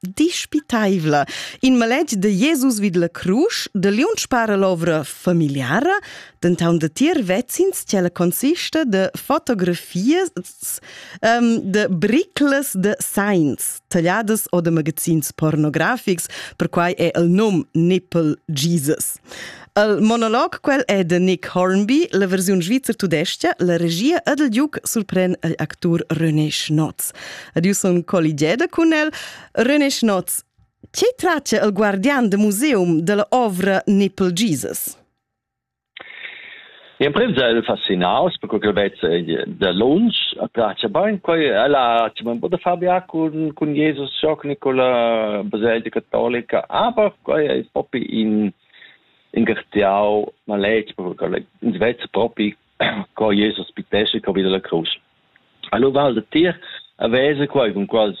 dispitaivla. In maletg de Jesus vid la crusch, de liunsch para l'ovra familiara, denton de tier vezins che la consista de fotografias um, de bricles de sains, tagliadas o de magazins pornografics, per quai è il num Nipple Jesus. Il monolog quel è da Nick Hornby, la versiun svizzer tudestga, la regia ed il giuc surpren igl actur René Schnotz. Ed io sun colligeda cun el. René Schnotz, che tratta il guardian de museum della ovra Nipple Jesus? L'emprim è el fascinaus perché quel vez da lunsch piace bain quai ella c'è un po da fabia cun cun Jesus Schock Nicola baselgia cattolica aber quai è propi in in gartiau maletg perché ins vez propi co Jesus pitesce co vide la cruz. Allora val da tir a vese quai con quals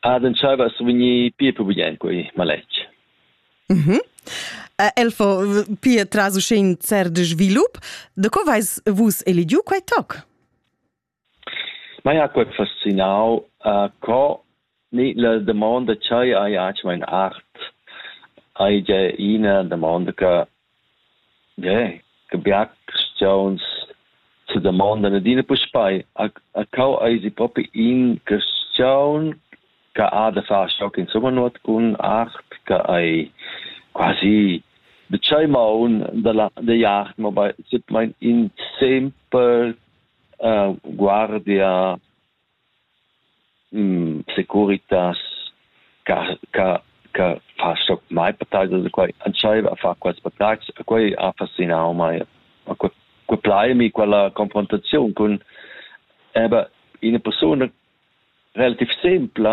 Ad entscheiva a survegnir pia pubeglian quei maletg. Mhm. Uh, el fo pia tras uschè in cert svilup. Da co vais vus eligiu quei toc? Ma ja quei fascinau, uh, co ni la domanda chai ai acium in art ai ge ina domanda che Gie, che bia carstgauns sedamondan adina puspei, a cau eisi propi in carstgaun che ha da far sco insumma nuot cun art, che ei quasi da tschei maun dalla digl art, mobein simplmein in simpel guardia securitas ca ca ca fa so mai appetaiser da quai entschaiva a far quels patagls e quai ha fascinau mei a que que plai mi quella confrontaziun cun eba ina persuna relativ simpla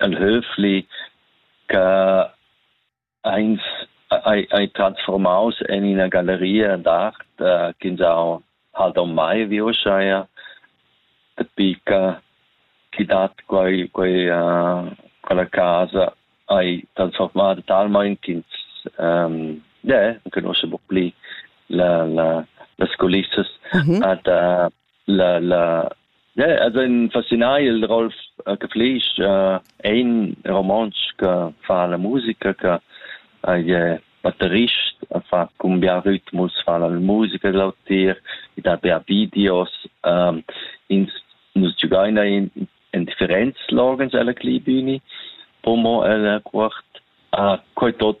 ein höfli che eins ei, ei transformaus en ina galleria d'art uh, ch'ins ha halt ormai vi uscheia pica chi dat quei, quei, uh, quella casa hai transformata talmain ch'ins um, yeah, conosce un po' pli la, la, las culissas mm -hmm. ad, uh, la la yeah, also in fascinai il Rolf äh, che flisch äh, ein romansch che fa la musica che è batterist fa cumbia ritmus fa la musica dell'autir da bea videos ähm, ins nus giugaina in in differenz logens alla klibini pomo alla quart a coi tot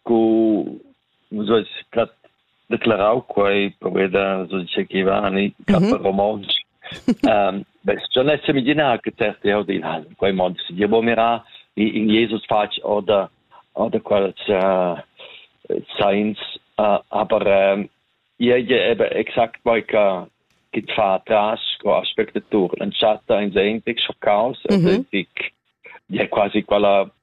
Sco nus eis stat declarau quei poveda Sudice Chivani mm romontsch ähm schon es semidina che terte ho dil hal quei mond si dir bo mira in Jesus fatg oder oder qual saints aber ihr eben exakt weil ka git fatras ko aspekte tur en chatta in sein dich chaos mhm. ja quasi quella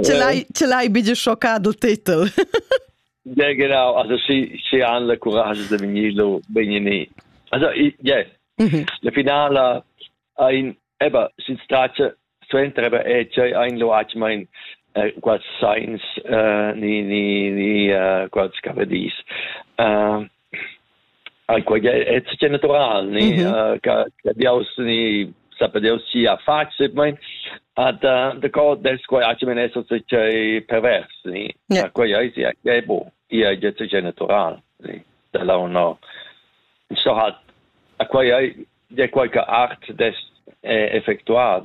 Ce l'hai, ce l'hai bigie schocca dal titel? Ja, genau. Also sie, sie haben le courage de venirlo bene. Also, ja, mhm. la finala ein, eben, si trace, suenter eben, eh, c'è ein loac, ma ein, eh, quasi science, eh, ni, ni, ni, eh, quasi scavadis. Eh, Ai quei è tutto natural, ni che Deus ni sape Deus sia face, ma da da co des quei aci men eso se pervers, ni quei ai sia che bo, ia je tutto natural, ni da la uno so hat a quei ai de quei che art des effectuat